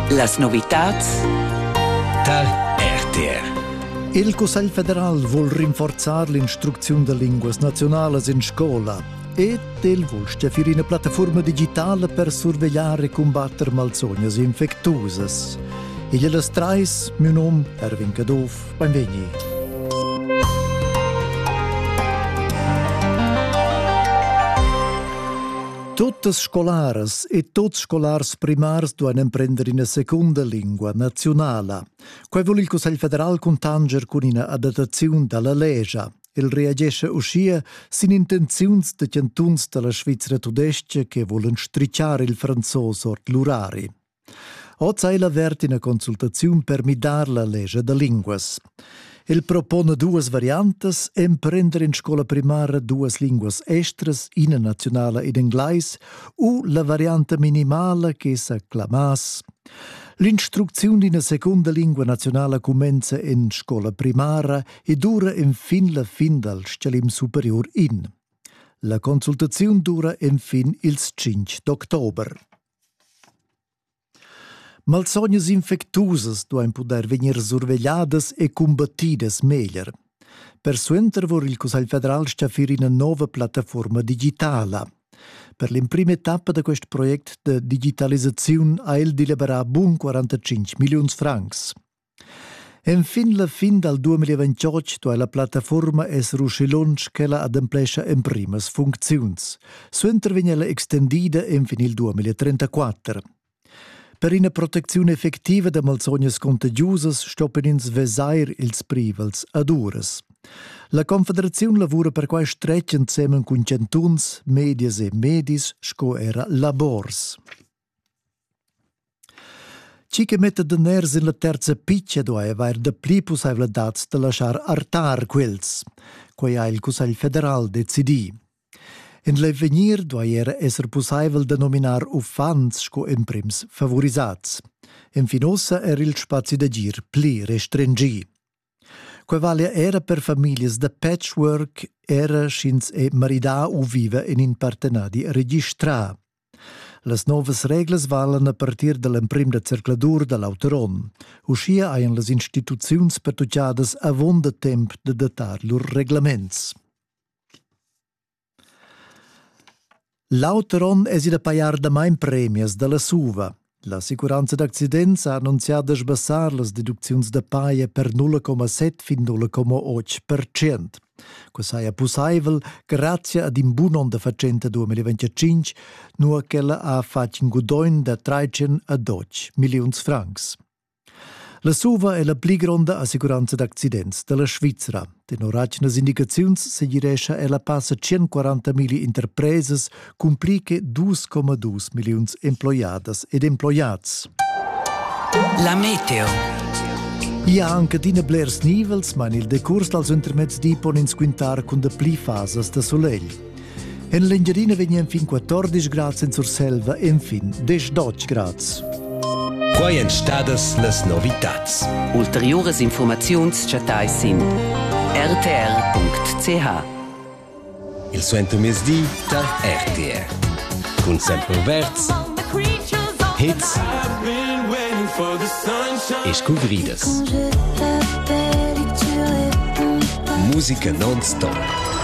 Las novitads tar RTR. Il Cussegl federal vul rinforzar l'instrucziun da linguas nazionalas in scola ed el vul steffir ina plattaforma digitala per survegliar e cumbatter malsognas infectuosas. Igl è las trais, mio nom Erwin Caduff, benvegni. Tuttas scolaras e tuts scolars primars duan emprender ina secunda lingua nazionala. Quai vul il Cussegl federal cuntanger cun ina adattaziun da la legia. El reagesce uschia sin intenziuns da chantuns da la Svizra tudestga che volan strichar il franzos ord l'urari. Oz ha el avert ina consultaziun per midar la lescha da linguas. El propona duas variantas, emprender in scola primara duas linguas estras, ina nazionala ed englais, u la varianta minimala che sa clamass L'instrucziun d'ina seconda lingua nazionala cumenza en scola primara e dura enfin la fin dal stgalim superior in. La consultaziun dura enfin ils 5 d'october. Malsognas infectusas duain pudair vegnir survegliadas e cumbattidas meglier. Persuenter vul il Cussegl federal staffir ina nova plattafuorma digitala. Per l'emprima etappa da quest project da digitalisaziun ha el deliberà bun 45 milliuns francs. Enfin la fin dal 2028 duai la plattafuorma esser uschi lunsch ch'ella ademplescha emprimas funcziuns. Suenter vegn ella extendida enfin il 2034. Per ina protecziun effectiva da malsognas contagiusas stoppen ins vesair ils privels ad uras. La Confederaziun lavura per quai stretg ensemen cun chantuns, medias e medis sco era labors. Chi che metta daners in la terza pitga duai avair dapli pussaivladads da laschar artar quels. Quai ha il Cussegl federal decidì. In l'avegnir duai era esser pussaivel da nominar uffants sco emprims favorisats. Infin ussa er il spazi d'agir pli restringì. Quei valia era per famiglias da patchwork, era sch'ins è maridà u viva en in partenadi registrà. Las novas reglas valan a partir da l'emprim da circladur da l'auter onn. Uschia hajan las instituziuns pertuccadas avon da temp da datar lur reglaments. L'auter onn es ida pajar damain premias da la SUVA. L'assicuranza d'accidents ha annunzià da sbassar las deducziuns da paja per 0,7 fin 0,8%. Quai saja pussaivel grazia ad in bun onn da fatschenta 2025, nua ch'ella ha fatg in gudogn da 13 a 12 milliuns francs. La suva è la pli gronda assicuranza d'accidents da la Svizra. Tenor atgnas indicaziuns segirescha ella passa 140.000 interpresas cun pli che 2,2 milliuns emploiadas ed emploiads. La meteo. Ia anche adina blers nivels, ma il decurs dals intermezzi pon ins quintar cun da pli fasas da solegl. En l'Engiadina vegnan fin 14 grads en Surselva enfin 10-12 grads. Quai èn stadas las novitads. Ulteriuras informaziuns chattais sin rtr.ch. Il suentermezdi tar RTR. Cun sempre verds, hits e scuvridas. Musica non-stop.